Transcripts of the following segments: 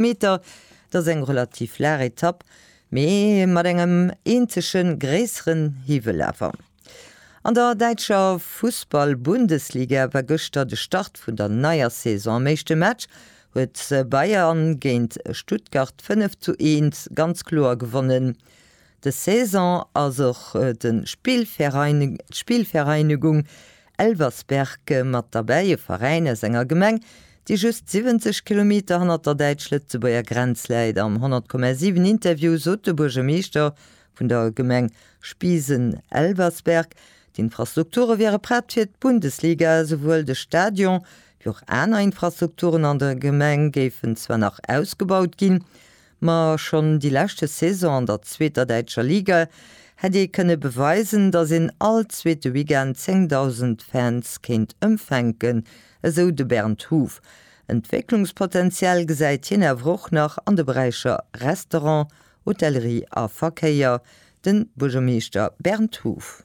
Meter. Et ass eng relativ laach Etapp, mee mat engem eenzege gréisseren Hiwwel awer. An der däitscher Fussball-Bundesliga war gëschter de Start vun der neier Saison. Am éischte Match huet Bayern géint Stuttgart 5 zu 1 ganz kloer gewonnen. Des Saison ass och de Spielvereinigung Elversberg mat derbäi, e Veräin aus enger Gemeng, déi just 70 Kilometer hannert der däitsch-lëtzebuerger Grenz läit. Am 100,7 Interview sot de Buergermeeschter vun der Gemeng Spiesen-Elversberg, d'Infrastrukture wiere prett fir d'Bundesliga. Esouwuel de Stadion wéi och aner Infrastrukturen an der Gemeng géifen zwar nach ausgebaut ginn. Ma schonn déi leschte Saison an der zweeter däitscher Liga hätt ee kënne beweisen, datt een all zweete Weekend 10.000 Fans kéint empfänken, esou de Bernd Huff. Entwécklungspotenzial gesäit hien awer och nach an de Beräicher Restaurant, Hotellerie a Verkéier, de Buergermeeschter Bernd Huff.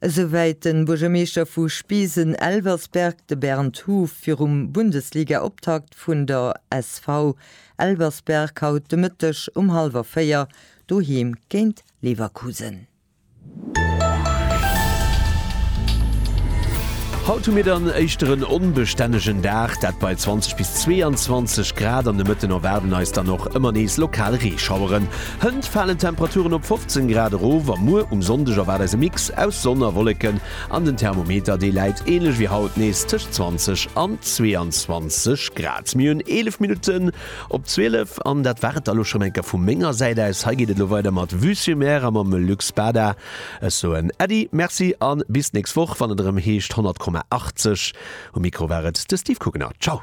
Esouwäit de Buergermeeschter vu Spießen-Elversberg, de Bernd Huff, virum Bundesliga-Optakt vun der SV. Elversberg haut de Mëtteg um hallwer 4 doheem géint Leverkusen. Haut hu mir dann éischter en onbestännegen Dag, dat bei 20 bis 22 Grad. An de Mëtten erwaarden eis dann och ëmmer nees lokal Reeschaueren. Hënt falen d'Temperaturen op 15 Grad erof a muer um Sonndeg erwaart eis e Mix aus Sonn a Wolleken an den Thermometer dee läit änlech wéi haut nees tëscht 20 an 22 Grad. Mir hunn 11 Minutten op 12 an dat war et da lo schonn eng Kéier vu menger Säit aus. Hei geet et lo weider mat Vue sur Mer a mam Luc Spada. Ech soen Äddi, Merci a bis d'nächst Woch wann et erëm heescht 100,80. Um Mikro war et de Steve Kuckner. Ciao.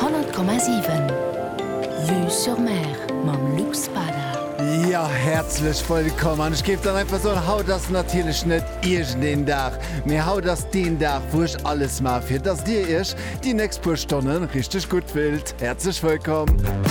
Honnert Komma siwen, Vue sur Mer mam Luc Spada. Jo, häerzlech wëllkomm an ech géif dann einfach soen, haut ass natierlech net iergend een Dag, mee haut ass deen Dag, wou ech alles maache fir dass Dir Iech déi nächst puer Stonne richteg gutt fillt. Häerzlech wëllkomm!